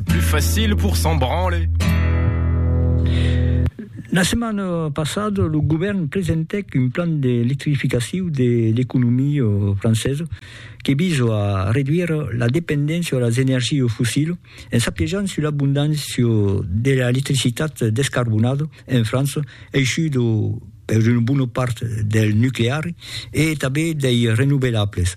Plus facile pour s'en branler. La setmana passada, lo govèrn presentèc un plan d'electrificacion de l'economia francesa que visa a reduire la dependéncia a las energias fossilas en s'apiejant sus l'abondància de l'electricitat descarbonada en França, aishuda per una bona part del nucleari e tanben dei renovelables.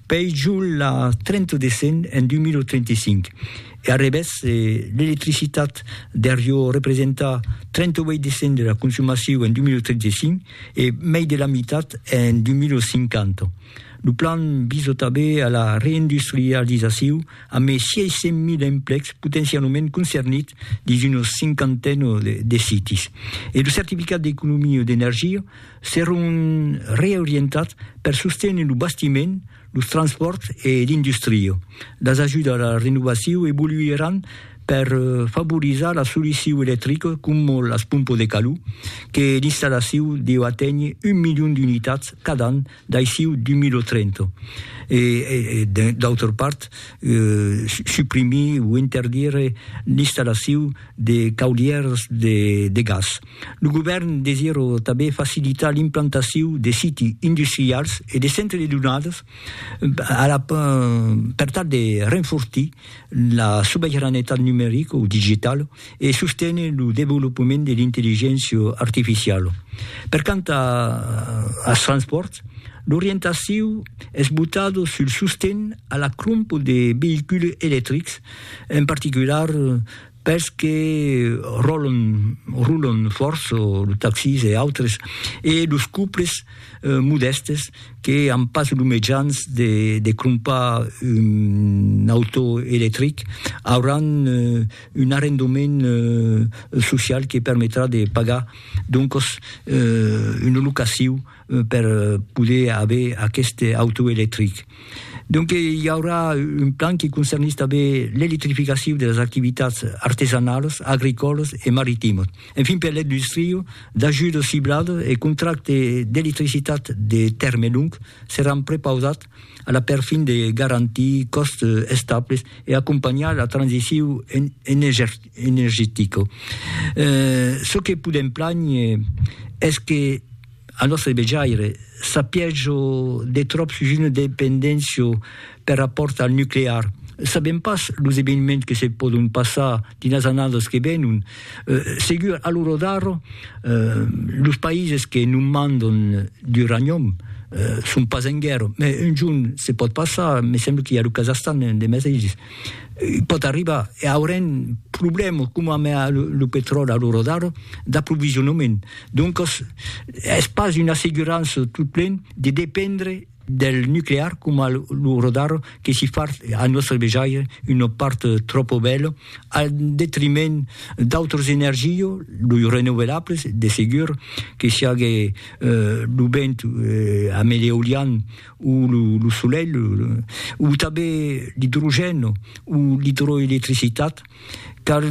Pei jol la 30 de cent en 2035, e arrevèrs l'electricitat der jo representa 38 de cent de la consumacion en 2035 e mei de la mitat en 2050. Lo plan visa tanben a la reindustrializacion a mei 600.000 emplecs potencialament concernits dins una cinquantena de sites. E lo certificat d'economia d'energia seront reorientats per sostenir lo bastiment, los transpòrts e l'industria. Las ajudas a la renovacion evoluiràn per favorizar la solucion electrica coma las pompas de calor, que l'installacion deu aténher un milion d'unitats cada an d'aicí 2030, e d'autra part suprimir o interdire l'installacion de caulièrs de gas. Lo govèrn desirò tanben facilitar l'implantacion de siti industrials e de centres de donadas per tal de renfortir la sobeiranetat numerica o digitala e sostener lo desvolopament de l'intelligéncia artificiala. Per quant als transpòrts, l'orientacion es botada sul sosten a la crompa de veïculs electrics, en particular, pels que ròlon, rulon fòrt, los taxis e autres, e los couples modèstes que an pas los mejans de de crompar un auto electric, auràn un arrendament social que permetrà de pagar doncos una locaciu, per poder aver aqueste auto electric. Donque i aurà un plan que concernís tanben l'electrificacion de las activitats artesanalas, agricòlas e maritimas. Enfin per l'industria, d'ajudas cibladas e contractes d'electricitat de tèrme long seràn prepausats a la perfin de garantir còstes estables e acompanhar la transicion energetica. Çò que podèm plànher es que, Al nòstre vejaire, sapièjo de tròp sus una dependéncia per rapòrt al nuclear. Sabèm pas los eveniments que se pòdon passar dins las annadas que venon. Segur, a lo rodar, los païses que non mandon d'uranium son pas en guèrra, mai un jorn se pòt passar, me sembla qu'i a lo Kazahstan de mesaires. Pòt arribar, e aurem problèmas coma amb lo petròli a l'ora d'ara, d'aprovisionament. Doncas, es pas una assegurança totplen de dependre del nuclear coma a l'ora d'ara, que si fa a nòstre vejaire una part tròpa bèla al detriment d'autras energias, los renouvelables, de segur, que siágue lo vent amb l'eolian ou lo solelh, ou tanben l'idrogèn ou l'idroelectricitat, cal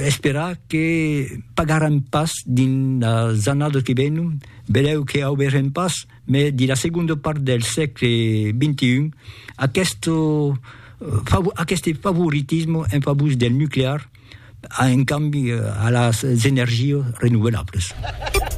esperar que pagarem pas dins las annadas que venon, benlèu que auberem pas, mai dins la segonda part del sègle xxi, aqueste aqueste favoritisme en favor del nuclear, en cambi a las energias renouvelablas.